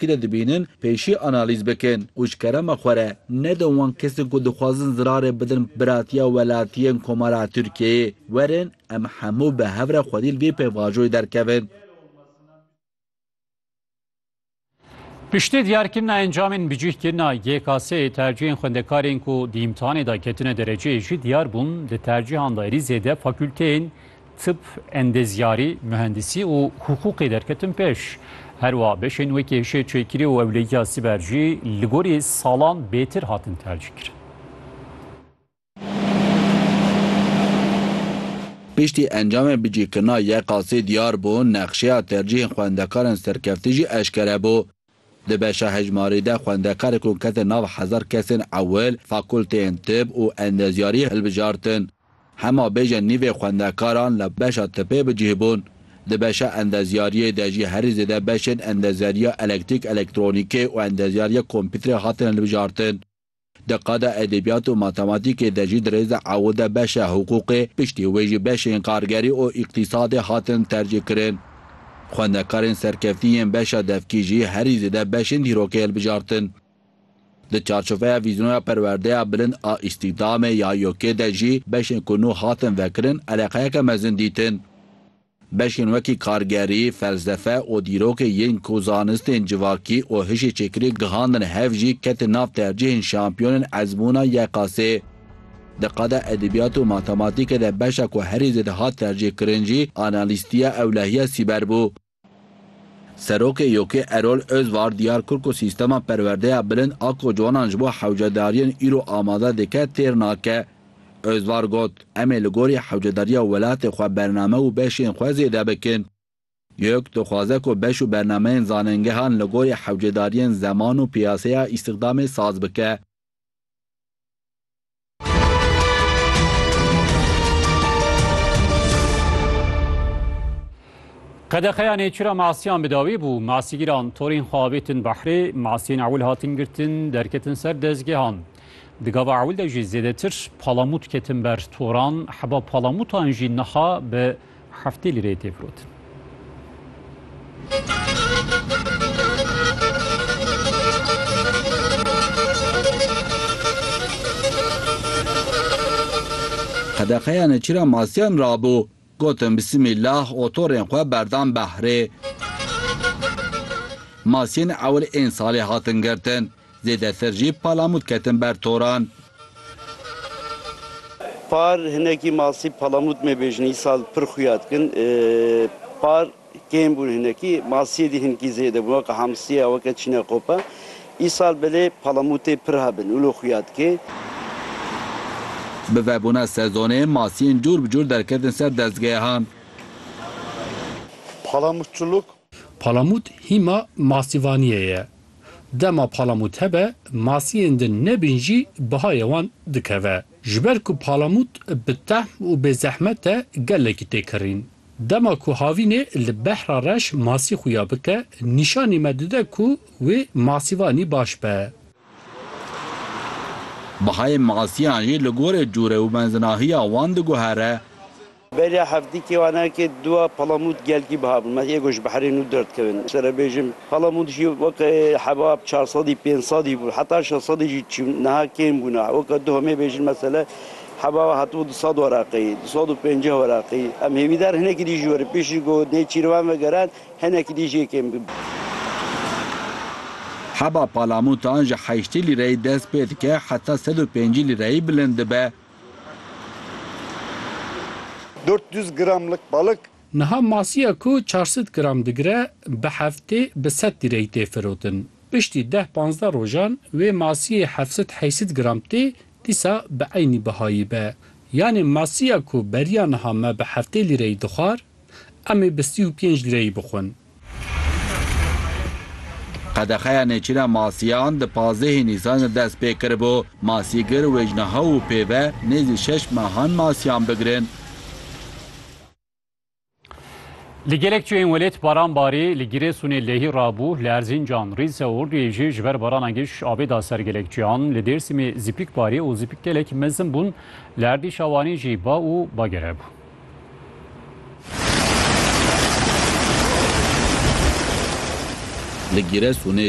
Gile dibînin pêşî analîz bikin û ji kerema xwe re nedin wan kesên ku dixwazin zirarê bidin biratiya welatiyên Komara Tirkiyeyê, werin em hemû bi hev re xwedî li vê pêvajoyê derkevin. Piştî diyarkirina encamên bi cih kirina YKS'ê tercîhên xwendekarên ku di îmtihanê de ketine dereceyê jî diyar bûn, di tercîhan de êrî zêde fakûlteyên Tib, endezyarî, muhendisî û huqûqê derketin pêş. Her wiha beşên wekî hişê çêkirî û ewlegiya sîber jî li gorî salan bêtir hatin tercîkirin. Piştî encamê bicîkirina YKASê diyar bû, nexşeya tercîhên xwendekaran serkeftî jî eşkere bû. Di beşa hejmarî de xwendekar ku kete nav hezar kesên ewil fakulteyên tib û endezyariyê hilbijartin. Hema bêje nîvê xwendekaran li beşa tipê bi cih bûn. Di beşa endezyariyê de jî herî zêde beşên endezyariya elektrîk-elektronîkê û endezyariya kompîterê hatin hilbijartin. Di qada edebiyat û matematîkê de jî di rêza ew de beşa hiqûqê, piştî wê jî beşên kargerî û îqtîsadê hatin tercîh kirin. Xwendekarên serkeftî yên beşa devkî jî herî zêde beşên dîrokê hilbijartin. Di çarçoveya vîzyonoya perwerdeya bilind a îstîhdamê ya YOK'ê de jî beşên ku nû hatin vekirin eleqeyeke mezin dîtin. Beşên wekî kargerî, felsefe û dîrokê yên ku zanistên civakî û hişê çêkirî gihandin hev jî ketin nav tercîhên şampiyonên ezmûna YKS. Di qada edebiyat û matematîkê de beşa ku herî zêde hat tercîhkirin jî analîstiya ewlehiya sîber bû. Serokê YKS Erol Özvar diyar kir ku sîstema perwerdeya bilind a ku ciwanan ji bo hewcedariyên îro amade dike têr nake. Ozvar got, Em ê li gorî hewcedariya welatê xwe bername û beşên xwe zêde bikin. Yök dixwaze ku beş û bernameyên zanengehan li gorî hewcedariyên zeman û piyaseya îstixdamê saz bike. Qedexeya nêçîra masiyan bi dawî bû. Masîgîran torên xwe avêtin behrê, masiyên ewil hatin girtin, derketin ser dezgehan. Di gava ewil de jî zêdetir palamût ketin ber toran, heba palamûtan jî niha bi heftê lîreyê tê firotin. Qedexe ya neçîra masiyan rabû. Gotin bi simê lax otorên xwe berdan behrê. Masiyên ewil ên salê hatin girtin. Zêdetir jî palamût ketin ber toran. Par hinekî masî palamût mêbêjin îsal pir xuya dikin. Par. Kêm bûn hinekî, masiyê dî hinkî zêde bûn weke hamsiye, weke çîne qope. Îsal belê palamûtê pir hebin û li xuya dike. Bi vebûna sezonê masiyên cûr bi cûr derketin ser dezgehan. Palamûtçiluk. Palamût hîma masîvaniyê ye. Dema palamût hebe, masiyên din nebîn jî bihayê wan dikeve. Ji ber ku palamût bi tehm û bê zehmet e gelekî tê kirîn. Dema ku havînê li behra reş masî xwe ya bike, nîşanî me dide ku wê masîvanî baş be. Bihayê masîyan jî li gorî cûre û mezinahiya wan diguhere. Beriya heftê kêwanan ke dua Palamûd gelkî biha bûn. Me êgo ji behrê nû derdkevin. Ji te re bêjim Palamûd jî weke heba çar sedî pênc sedî bû heta şeş sedî jî çûn. Niha kêm bûne. Weke tu hemê bêjin mesele. Heba we hatibû du sed weraqî, du sed û pênceh weraqî. Em hêvîdar hinekî dî ji werî pêşî ku nê çîrvan vegeran hinekî dî jê kêm bibin. Heba palamûtan ji heştî lîreyî dest pê dike heta sed û pêncî lîreyî bilind dibe. Dört yüz gramlık balık. Niha masiya ku çar sed gram digire bi heftê bi sed lîreyî tê firotin. Piştî deh panzdeh rojan wê masiyê heft sed heyst sed gram tê Dîsa bi eynî bihayî be. Yanê masiya ku beriya niha me bi heftê lîreyî dixwar, em ê bi sî û pênc lîreyî bixwin. Qedexeya nêçîna masiyan di pazdehê Nîsan de dest pê kiribû. Masîgir wê ji niha û pê ve nêzî şeş mehan masiyan bigirin. Li gelek çiyên welêt baran barî, li Girêsûnê lehî rabû, li Erzîncan, Rîse û Orduyê jî ji ber barana giş avê da ser gelek çiyan, li Dêrsimê zîpik barî û zîpik gelek mezin bûn, li erdî Şawanî jî ba û bagere bû. Li Girêsûnê